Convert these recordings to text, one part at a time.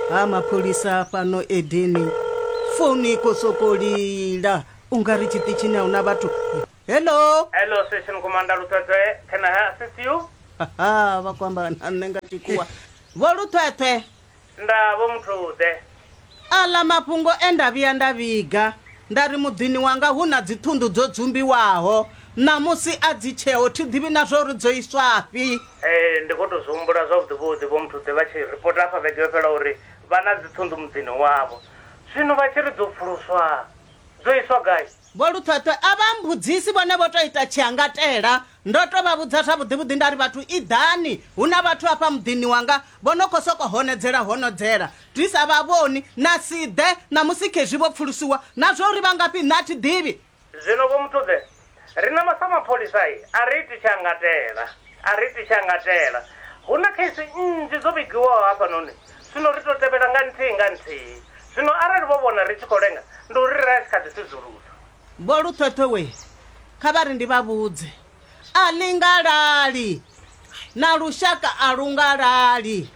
ha mapholisa fhano edeni founu i khou sokou lila u nga ri tshiṱitshini a hu na vhathu hello Hello, Station Commander Luthwethwe. Can I assist you? haha vha khou amba na nṋe nga tshikhuwa vho luthwethwe Nda vho muthu ḓe. Aḽa mafhungo e nda vhuya nda vhiga nda ri muḓini wanga hu na dziṱhunḓu dzo dzumbiwaho, ṋamusi a dzi tsheho, thi ḓivhi na zwa uri dzo iswafhi. Ee, ndi khou tou zwi humbula zwavhuḓivhuḓi Vho Mthuḓe vha tshi ripota afha vhege yo fhelaho uri vha na dziṱhunḓu muḓini wavho. Zwino vha tshi ri dzo pfuluswa, dzo iswa gai? Vho Luṱhweṱhwe a vha mmbudzisi, vhone vho tou ita tshiangatela. Ndo tou vha vhudza zwavhuḓivhuḓi nda ri, Vhathu iḓani, hu na vhathu afha muḓini wanga vho no khou sokou honodzela honodzela ndi sa vha vhoni, na si ḓe ṋamusi khezwi vho pfulusiwa. Na zwa uri vha ngafhi nṋe a thi ḓivhi. Zwino Vho Muthuḓe, riṋe sa mapholisa a ri iti tshiangatela, a ri iti tshiangatela. Hu na kheisi nnzhi dzo vhigiwaho hafhanoni, zwino ri tou tevhela nga nthihi nga nthihi. Zwino arali vho vhona ri tshi khou lenga, ndi uri ra tshi kha ḓi sudzulusa. Vho Luṱhoṱho we kha vha ri ndi vha vhudze, a ḽi nga lali, na lushaka a lu nga lali.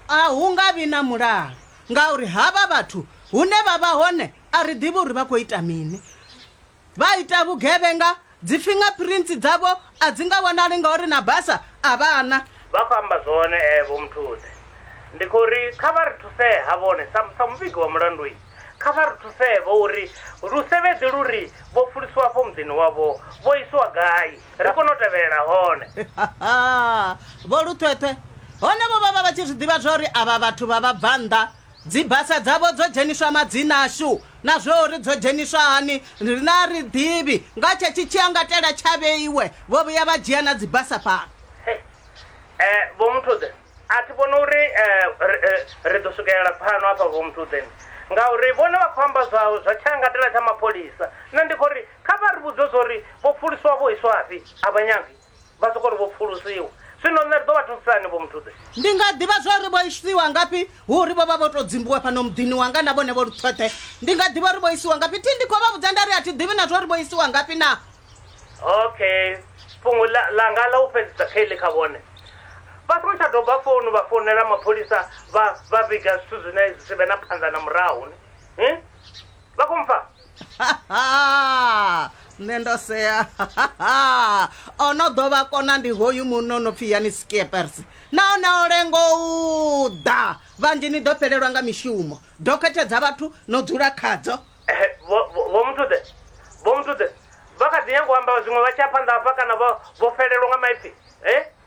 A hu nga vhi na mulalo ngauri havha vhathu hune vha vha hone a ri ḓivhi uri vha khou ita mini. vha ita vhugevhenga dzi fingerprints dzavho a dzi nga vhonali ngauri na basa a vha na Vha khou amba zwone eh, Vho Mthudze. Ndi khou ri kha vha ri thusee ha vhone sa, sa muvhigi wa mulandu i, kha vha ri thusee vho uri lusevhedzi lu ri vho fulisiwa afho muḓini wavho vho isiwa gai ri kone u tevhelela hone. Vho Luṱhweṱhwe hone vho vha vha vha tshi zwi ḓivha zwa uri avha vhathu vha vhabvannḓa Dzibasa dzavho dzo dzheniswa madzina ashu, na zwa uri dzo dzheniswa hani riṋe a ri ḓivhi. Nga tshetshi tshiangatela tsha vheiwe, vho vhuya vha dzhia na dzibasa fhano. Hey, eh, Vho Muthude, a thi vhoni uri ri, ri ḓo swikelela pfano hafha, Vho Muthude, ngauri vhone vha khou amba zwa, zwa tshiangatela tsha mapholisa. Nṋe ndi khou ri kha vha ri vhudze zwa uri vho pfuluswa vho iswafhi, a vha nyagi. Vha sokou ri vho pfulusiwa. Zwino nṋe ri ḓo vha thusisa hani, Vho Mthudze? Ndi nga ḓivha zwa uri vho isiwa ngafhi hu uri vho vha vho tou dzimbiwa fhano muḓini wanga na vhone vho luṱhoṱhe? Ndi nga ḓivha uri vho isiwa ngafhi? Thi ndi khou vha vhudza nda ri a thi ḓivhi na zwa uri vho isiwa ngafhi na. Okay, fhungo ḽa, ḽanga ḽa u fhedzisa kha iḽi kha vhone. Vha songo tsha doba founu vha founela mapholisa vha vha vhiga zwithu zwine zwi si vhe na phanḓa na murahu, ni. Hi? vha khou mpfa nṋe ndo sea o no ḓo vha kona ndi hoyu munna o no pfhi yani skiepers nahone o lengo u ḓa vhanzhi ni ḓo fhelelwa nga mishumo dokhethe dza vhathu no dzula khadzo Ehe, vho vho- vho muthuḓe vho muthuḓe vha kha ḓi nyanga u amba zwiṅwe vha tshi ya phanḓa hafha kana vho vho felelwa nga maipfi e